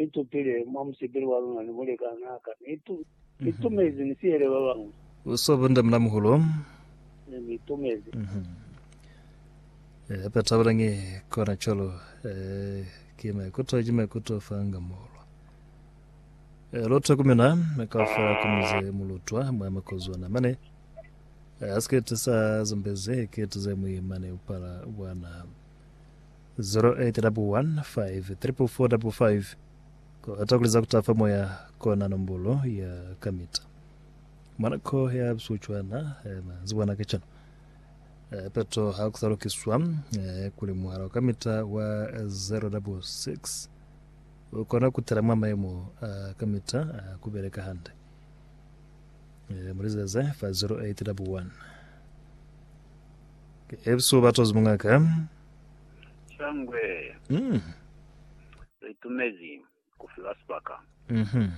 ni tupile mwa musipili wa luna ni mulikanaa ka, ni tu, ni tumezi ni sihele ba bañwi. Uso bonde muna muhulo. Ne ni tumezi. Eh, hape tabelangi kona calo, eh, ki maikuto, ki maikuto fa nga muhulo. Eh, lotwe kumina, kafa kumize mulutwa, mwa makozwana mane. Eh, asiketi sa zumbezi, eketi ze mwi mane upala bwana. 0815454555 Kuata kuliza kuta fa moya kona nombolo ya kamita. Mwana ko ya bisu cwana eh, manzibwa na kacenu. Eh, peto ha ku sa lukiswa eh, kuli muhala wa kamita wa 066 u kona ku tela mwa mayemo a kamita a ku beleka hande. Eh, mulizeze fa 0811 ke ebisu batozi mungaka. Shangwe, Mm. litumezi kufiwa sibaka. Mhm.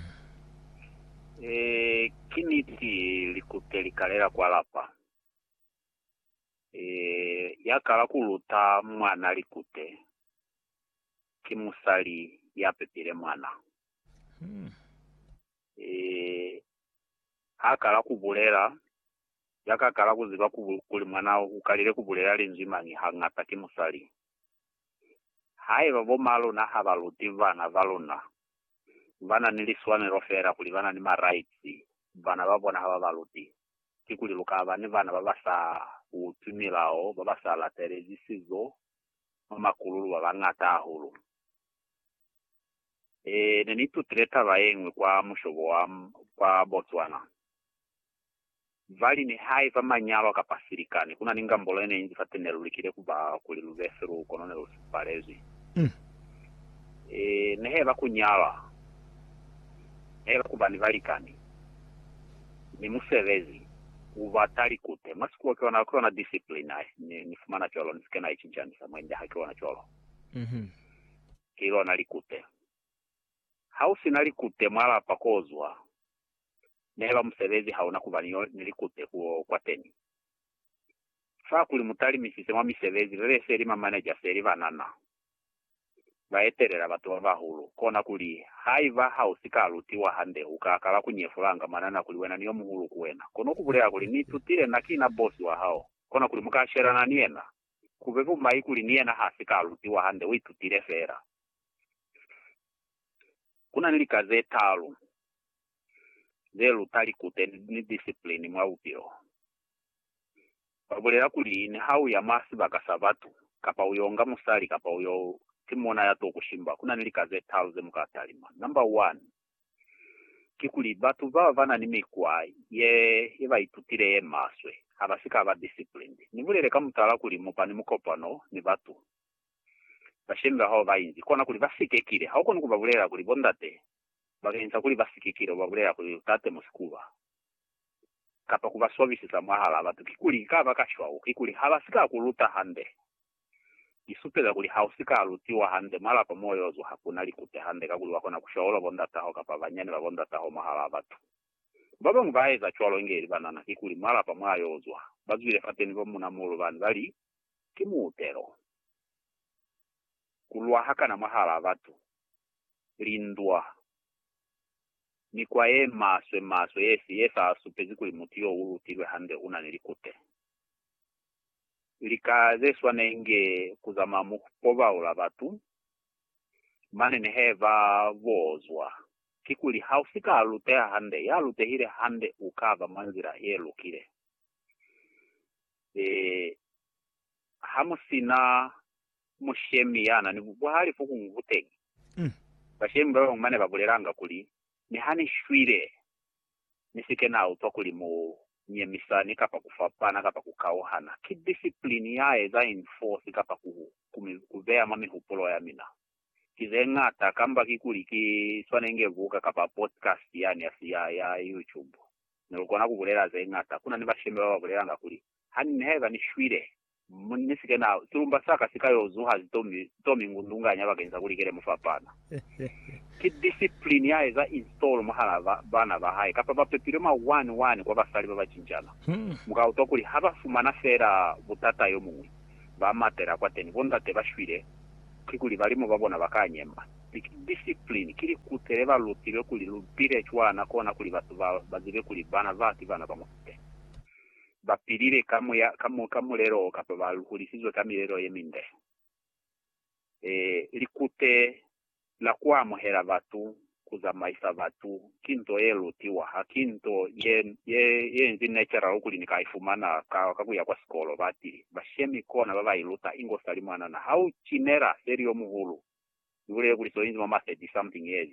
Eh, ki niti likupe likalela kwa lapa. Eh, ya kala kuluta mwana likupe ki musali ya pepile mwana. Mm. Eh, ha kala kubulela Ya ka kala ku ziba kuli mwanao u kalile ku bulela linzwi mañi hañata ki musali. Haiba bo ma luna ha ba luti bana ba luna, ba na ni liswanelo feela kuli ba na ni ma-rights, bana ba bona ha ba ba luti, kikuli lu ka ba ni bana ba ba sa utwi milao, ba ba sa latelezi sizo, ba makululu ba bañata hahulu. Ee, ne ni itutile taba ye ñwi kwa mushobo wa kwa Botswana. Vali, Nihaiba manyalwa kapa silikani, kuna ni ngambolo yeneinzi fate nelulikile kuba kuli lubefe luo kono nelusipalezwi. Ee, neheba kunyalwa, neheba kuba ni balikani, ni musebezi, kuba talikute. Mwa sikulo kiona, kiona discipline ai ni, ni fumana cwalo, nisike na icincanisa mwa India, hakiona cwalo? Ki lona likute. Hausina likute mwa lapa kozwa, neba musebezi hauna kuba ni yo ni likute kuo kwateni. Fa kuli mutalimisise mwa misebezi bebe seli mamaneja seli banana baetelela batu babahulu, kona kuli, Haiba hausika lutiwa hande, uka kala kunyefulanga manana kuli wena ni yomuhulu ku wena, kono kubulela kuli, Ni itutile na ki na bosi wa hao. Kona kuli muka shelana ni yena. Kube bumai kuli ni yena hasika lutiwa hande, uitutile fela. Kuna ni lika zetalu ze luta likute ni disiplini mwa bupilo. Ba bulela kuli, Niha u ya mwa sibaka sa batu, kapa u yo nga musali kapa u yo timona ya t'o ku shimba, ku na ni lika ze talu ze mu ka talima. Namba wani, kikuli batu bao ba na ni mikwa ye ba itutile ye maswe, ha ba si ka ba disciplined. Ni bulele ka mutala kuli mu ba ni mukopano ni batu bashemi bahao ba inzi, kona kuli ba si kekile. Ha u koni ku ba bulelela kuli, Bondate, ba ka inza kuli ba si ke ke ba bulela kuli lu ta temusa ku ba kapa ku ba swabisisa mwahalaa batu. Kikuli, ka baka cwalo, kikuli ha ba si ka ku luta hande, ki supeza kuli ha u si ka lutiwa hande mwa lapa mo y'o zwa ha ku na likute hande kakuli wa kona ku shaula bo ndata hao kapa banyani ba bo ndata hao mwahalaa batu. Ba bañwi ba eza cwalo inge li banana, kikuli mwa lapa mw'a y'o zwa, ba zwile fateni ba muuna muulu bani ba li, Ki muutelo ku lwa hakana mwahalaa batu. lindwa, mikwa ye maswe maswe yefi ye sa supezi kuli mutu yo u lutilwe hande una ni likute. Lika ze swana inge ku zama mu pobaula batu, mane ni he ba bozwa, kikuli ha u si ka luteha hande, ya lutehile hande u ka ba mwa nzila ye lukile. E, ha mu si na mushemi ya na ni buhali fukuñwi kuteñi. Bashemi ba bañwi ba ne ba bulelanga kuli, Niha ni shwile, ni si ke na utwa kuli mu nyemisa ni kapa ku fapana kapa ku kauhana. Ki disiplini ya eza infosi kapa ku ku beya mwa mihupulo ya mina. Ki ze ñata, kamba kikuli ki swane nge buka kapa podcast yani ya ya YouTube. Ne lu kona ku bulela ze ñata. Ku na ni bashemi ba ba bulelanga kuli, Hanni haiba ni shwile, mu ni si ke na, silumba sa ka si ka yo zuha zitomi, zitomi ngundunganya bakeni sa kuli kele mufapana. Ki discipline ya eza install mwahala ba, bana ba hae, kapa ba pepilwe mwa one, one kwa basali ba ba cincana. Mu ka utwa kuli ha ba fumana fela butata yo muñwi, ba matela kwateni. Bondate ba shwile, kikuli balimu ba bona ba ka nyema. Mi ki discipline, ki likute le ba lutilwe kuli lu bile cwana kona kuli batu ba, ba zibe kuli bana ba ki bana ba mufuteni. ba pilile ka muya, ka, ka mulelo o kapa ba hulisizwe ka milelo ye minde. E, likute la ku amuhela batu, ku zamaisa batu, ki nto ye lutiwa. Ha ki nto ye, ye, ye inzi natural kuli ni ka i fumana ka, ka ku ya kwa sikolo. Ba ti, Bashemi kona ba ba i luta, inge u sa li mwanana. Ha u cinela seli yo muhulu, ni bulele kuli so inzi mwa ma thirty-something years.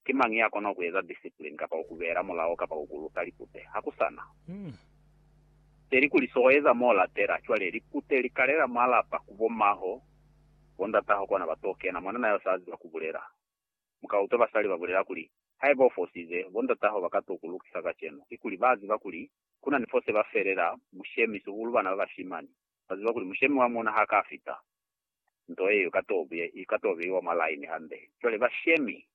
Ki mañi ya kona ku eza discipline kapa ku ku beela mulao kapa ku ku luta likute? Ha ku sa na. Peli kuli so eza m'o lapela. Cwale, likute li kalela mwa lapa, ku bo maho, bo ndataho kona ba t'o kena. Mwanana yo s'a ziba ku bulela. Mu ka utwa basali ba bulela kuli, Haiba u fosize, bo ndataho ba ka t'o ku lukisa kacenu. Ki kuli, ba ziba kuli ku na ni fo se ba felela mushemi, sihulu bana ba bashimani. Ba ziba kuli mushemi wa muna ha ka fita. nto yeo i ka to beiwa mwa laini hande. Cwale bashemi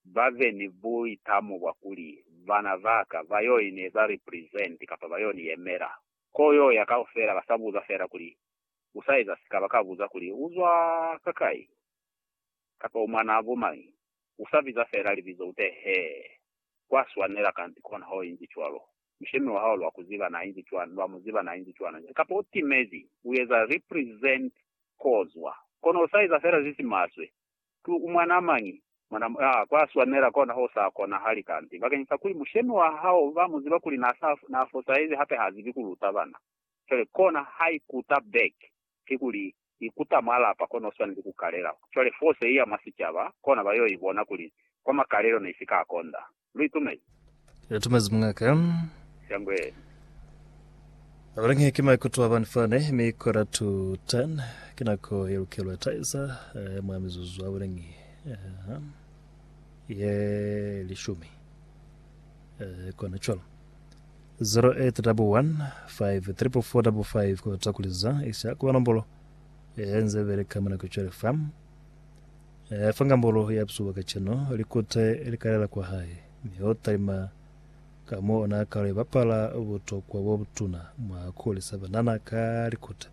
ba be ni buitamo bwa kuli, Bana ba ka ba yo ni eza represent kapa ba yo ni yemela. Ko yo ya kaufela ba sa buza fela kuli, U sa eza sika, ba ka buza kuli, U zwa kakai? Kapa u mwanaa bo mañi? U sa biza fela libizo ute, Hee, kwa swanela kanti kona ho inzi cwalo. Mushemi wa hao lwa ku ziba na inzi cwana, lwa mu ziba na inzi cwana nje. Kapa u timezi, u eza represent kozwa. Kono u sa eza fela ze si maswe. Ki u mwanaa mañi? Mwana, aa, kwa swanela kona ho sa konahali kanti, bakeñisa kuli mushemi wa hao ba mu ziba kuli na sa, na fosahezi hape ha zibi ku luta bana. Cwale kona ha ikuta back, kikuli, I kuta mwa lapa kona uswaneli ku kalela. Cwale force iya mwa sicaba, kona ba yo ibona kuli kwa makalelo ne isika ya konda. Lu itumezi? Lu itumezi, mungaka. Shangweli. Abalangi ki maikuto a bani fani, mi quarter to ten ki nako ye lukelwe taisa ya mwa mizuzu abalangi ye lishumi. Kona cwalo. 085545 kota kuli za isha kuba nombolo ye nze beleka mwa nako cwale fa e fa ngambolo ya psuwa kacenu likute li kalela kwa hae mi o talima ka mo ona kalo ibapala butokwa bo butuna mwa kulisa banana ka likute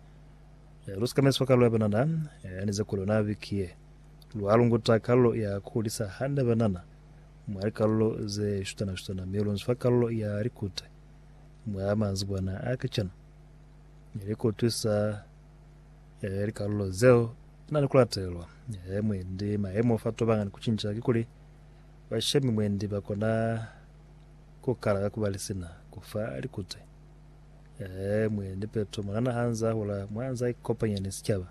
e lu sikameswa kalo ya banana e nize kuli ona biki ye lwa lunguta kalo ya kulisa hande banana Mwa likalulo ze shutana-shutana mi lu nzwa kalulo ya likuta mwa manzibwana a kacenu, mi li kutwisa eh, likalulo zeo na ni ku latelwa. Eh, mwendi mayemo fa tobanga ni ku cinca kikuli bashemi mwendi ba kona ku kala ka ku ba lisina ku fa likuta. Eh, mwendi peto mwanana ha nza hula mwa nza ikopanya ni sicaba.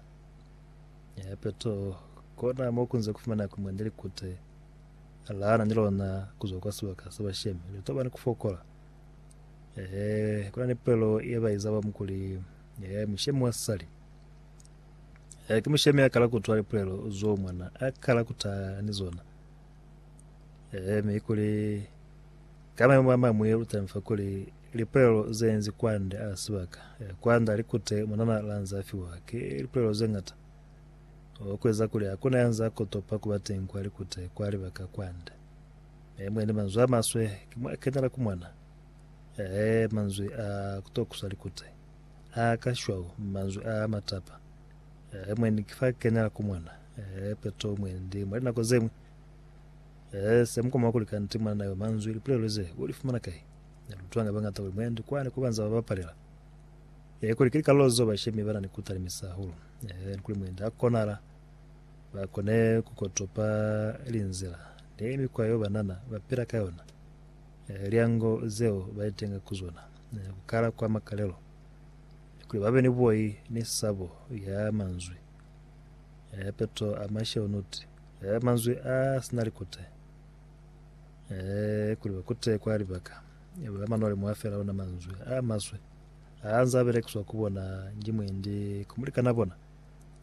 Eh, peto kona mo ku nze ku fumana ku mwendi likuta. A laana ni lona ku zwa kwa sibaka sa bashemi. Li tobani ku fokola. Ehe, ku na ni pulelo ye ba iza ba mukuli. Ehe, mushemi wa sali. Ehe, ki mushemi a kala ku twa lipulelo zo mwana a kala ku ta ni zona. Ehe, mi kuli ka maemo a mamwe lu tami fa kuli lipulelo ze nzi kwande a sibaka. Ehe, kwanda likute mwanana lanza fiwa ki lipulelo ze ngata. Obo kueza kuli hakuna yanza kotopa kuba teñi kwa likute kwa libaka kwande. Mi mwendi manzwi amaswe ki mwa kenela ku mona. Ee, manzwi a kutokusa likute, a ka shwau, manzwi a matapa. Ee, mwendi ki fa kenela ku mona. Ee, peto mwendi mwa linako zeñwi. Ee, se mukoma kuli kanti mwanana yo manzwi, lipulelo ze, u li fumana kai? Ne lu utwanga bangata kuli mwendi kwani ko banza ba bapalela. Ee, kuli ki likalolo zeo bashemi bana ni ku talimisa hahulu. Ni kuli muinzi ha konala, ba kone ku kotopa linzila ni mikwa yeo banana ba pila ka yona, lyango zeo ba itenga ku zona, ku kala kwa makalelo, ni kuli babe ni buoi ni sabo ya manzwi a peto a masheunuti, manzwi a sina likute, kuli ba kute kwa libaka ba manwali mwa fela ona manzwi a maswe. Ha nzaa belekiswa ku bona nji mwendi ku mulikana bona,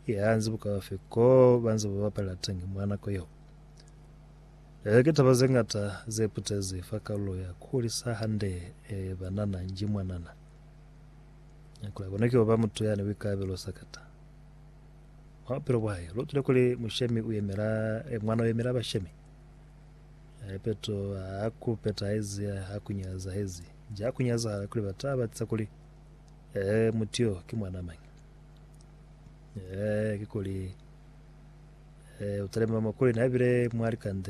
ki ha nzi bukaufi ko ba nze ba bapalela teñi mwa nako yeo. Ee, ki taba ze ñata ze putezi fa kalulo ya ku hulisa hande banana nji mwanana. Kuli abonwe ki oba mutu yani buikalabelo sakata mwa bupilo bwa hae. Lu utwile kuli mushemi u yemela, mwana u yemela bashemi. Ee, Petro ha ku petahezi ha ku nyazahezi. Ja ku nyazahala kuli ba taba za kuli, Ee, mutu yo ki mwana mañi? Ee, ki kuli, Ee, u talima mwa kuli na bile mwa likande.